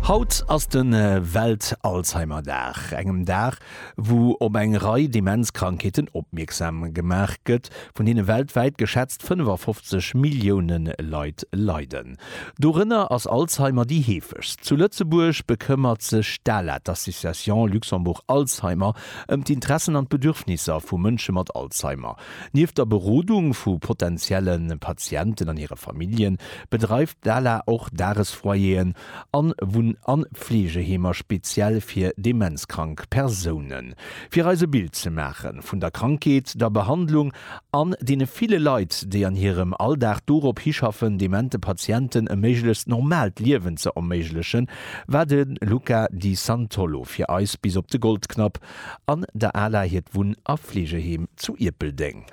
Haut ass de Welt-Alzheimer-Dag, engem Dag, wou op eng Rei Demenzkrankheeten opmierksam gemaach gëtt, vun deene weltwäit geschätzt 55 Millioune Leit leiden. Dorënner ass Alzheimer déi heefegst. Zu Lëtzebuerg bekëmmert sech d'ALAD, d'Association Luxembourg Alzheimer, ëm d'Interessen an d'Bedürfnisser vu Mënsche mat Alzheimer. Nieft der Berodung vu potentielle Patienten an hire Familljen, bedreift d'ALA och Dagesfoyeren an Wunn an Fleegeheemer speziell fir demenzkrank Persounen. Fir eis e Bild ze maache vun der Krankheet, der Behandlung an deene ville Leit, déi an hirem Alldag dorop hischaffen, demente Patienten e méiglechst normaalt Liewen ze erméiglechen, war de Luca Di Santollo fir eis bis op de Goldknapp An der Ala hiert Wunn a Fleegeheem zu Ierpeldeng.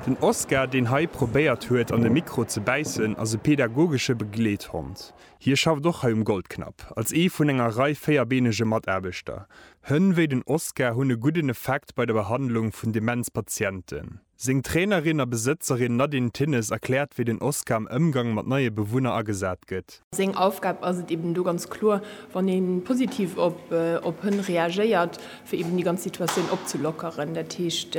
Den Oskar, deen hei probéiert huet an de Mikro ze bäissen, ass e pedagogesche Begleethond. Hie schafft och hei um Goldknapp, als ee vun enger Rei véierbeenege Mataarbechter. Hënn wéi den Oskar hunn e gudden Effekt bei der Behandlung vun Demenz-Patienten. Seng Trainerin a Besëtzerin Nadine Thinnes erkläert, wéi den Oskar am Ëmgang mat neie Bewunner agesat gëtt. Seng Aufgab ass et eben do ganz kloer, wann ee positiv op Hënn reagéiert, fir eben déi ganz Situatioun opzelockeren. Dat heescht,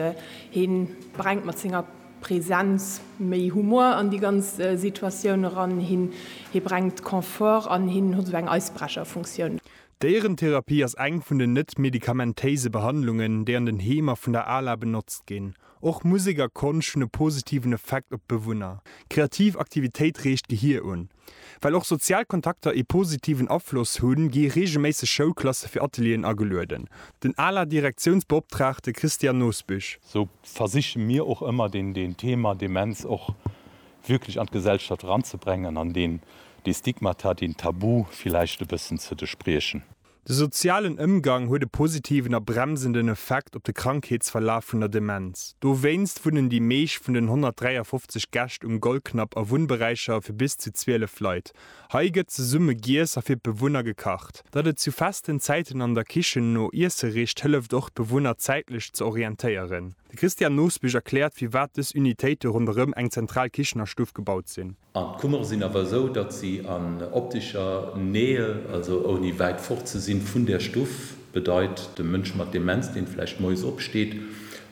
hie brengt mat senger Presenz méi Humor an déi ganz Situatioun eran, hie brengt Confort an, hien huet esou eng Eisbrecherfunktioun. D'Déierentherapie ass eng vun den net medikamentéise Behandlungen, déi an den Heemer vun der ala benotzt ginn. Och Musek a Konscht hunn e positiven Effekt op d'Bewunner. Kreativ Aktivitéit reegt d'Gehir un. Well och sozial Kontakter ee positiven Afloss hunn, gi reegelméisseg Schoulklasse fir Atelieren agelueden. Den ala Direktiounsbeoptraagte Christian Nosbüsch. Sou versiche mir och ëmmer den Thema Demenz och wierklech an d'Gesellschaft eranzebrengen an deen, dee Stigmata, deen Tabu villäicht e bëssen ze despriechen. De sozialen Ëmgang huet e positiven a bremsenden Effekt op de Krankheetsverlaf vun der Demenz. Dowéinst wunnen déi meescht vun den 153 Gäscht um Goldknapp a Wunnberäicher fir bis zu 12 Leit. Hei gëtt zesumme giess a fir d'Bewunner gekacht. Datt et zu festen Zäiten an der Kichen no Iesse richt, hëlleft och d'Bewunner zäitlech ze orientéieren. De Christian Nosbich erkläert, firwat dës Unitéite ronderëm eng zentral Kichenerstuff gebaut sinn. An d'Kummere sinn awer esou, datt si an optescher Nähe, also ouni wäit fort ze sinn vun där Stuff, bedeit, de Mënsch mat Demenz, dee vläicht moies opsteet,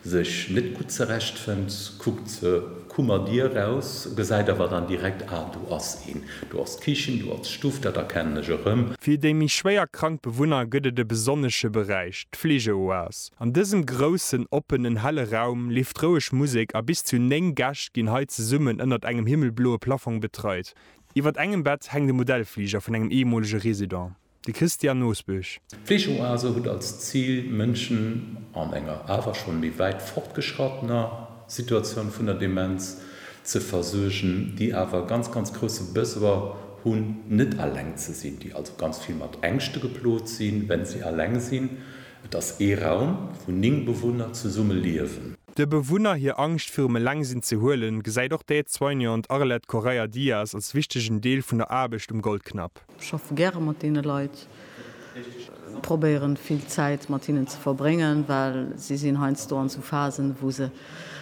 sech net gutt zerechtfënnt, kuckt d'Kummerdier eraus, gesäit awer dann direkt, ah, do ass een, do ass d'Kichen, do ass d'Stuff, dat erkennen ech erëm. Fir déi méi schwéier krank Bewunner gëtt et e besonnesche Beräich, d'Fleegeoas. An dësem groussen, oppenen, helle Raum leeft roueg Musek a bis zu 9 Gäscht ginn hei zesummen ënnert engem himmelbloe Plafong betreit. Iwwert engem Bett hänkt e Modellfliger vun engem eemolege Resident, de Christian Nosbusch. D'Fleegeoase huet als Zil, Mënschen an enger awer schonn méi wäit fortgeschrattener Situatioun vun der Demenz ze versuergen, déi awer e ganz, ganz grousse Besoin hunn, net alleng ze sinn, déi also ganz vill mat Ängschte geplot sinn, wenn si alleng sinn, Et ass ee Raum, wou 9 Bewunner zesumme liewen. De Bewunner hir Angscht virum Elengsinn ze huelen, gesäit och d'Aide-soignante Arlette Correia Dias als wichtegen Deel vun der Aarbecht um Goldknapp. Ech schaffe gäre mat deene Leit, probéieren vill Zäit mat hinnen ze verbréngen, well si sinn heiansdo an esou Phasen, wou se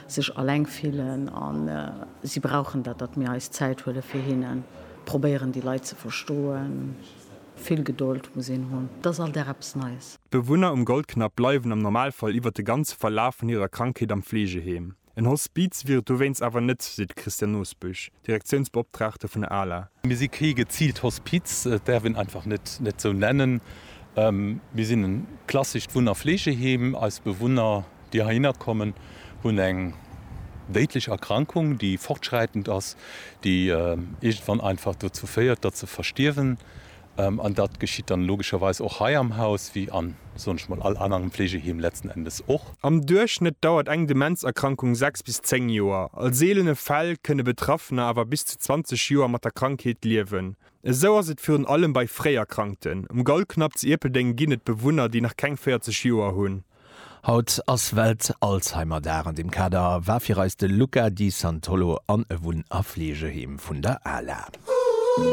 sech alleng fillen a si brauchen dat, datt mir eis Zäit huele fir hinnen, probéieren déi Leit ze verstoen. Vill Gedold muss een hunn, et ass all Dag eppes Neies. D'Bewunner um Goldknapp bleiwen am Normalfall iwwer de ganze Verlaf vun hirer Krankheet am Fleegeheem. En Hospiz wier et dowéinst awer net, seet de Christian Nosbusch, Direktiounsbeoptraagte vun der ala. Mir si kee geziilt Hospiz, et däerf een einfach net esou nennen. Mir sinn e klassescht Wunn a Fleegeheem. Eis Bewunner déi heihinner kommen, hunn eng déidlech Erkrankung, déi fortschräitend ass, déi iergendwann einfach dozou féiert, datt se verstierwen. An dat geschitt dann logescherweis och hei am Haus, wéi a, soen ech mol, all anerem Fleegeheem letzten Endes och. Am Duerchschnëtt dauert eng Demenzerkrankung sechs bis zéng Joer. A seelene Fäll kënne Betraffener awer bis zu 20 Joer mat der Krankheet liewen. Esou ass et virun allem bei Fréierkrankten. Um Gaulknapp zu Ierpeldeng ginn et Bewunner, déi nach keng 40 Joer hunn. Haut ass Welt-Alzheimer-Dag an deem Kader war fir eis de Luca Di Santolo an e Wunn a Fleegeheem vun der ala.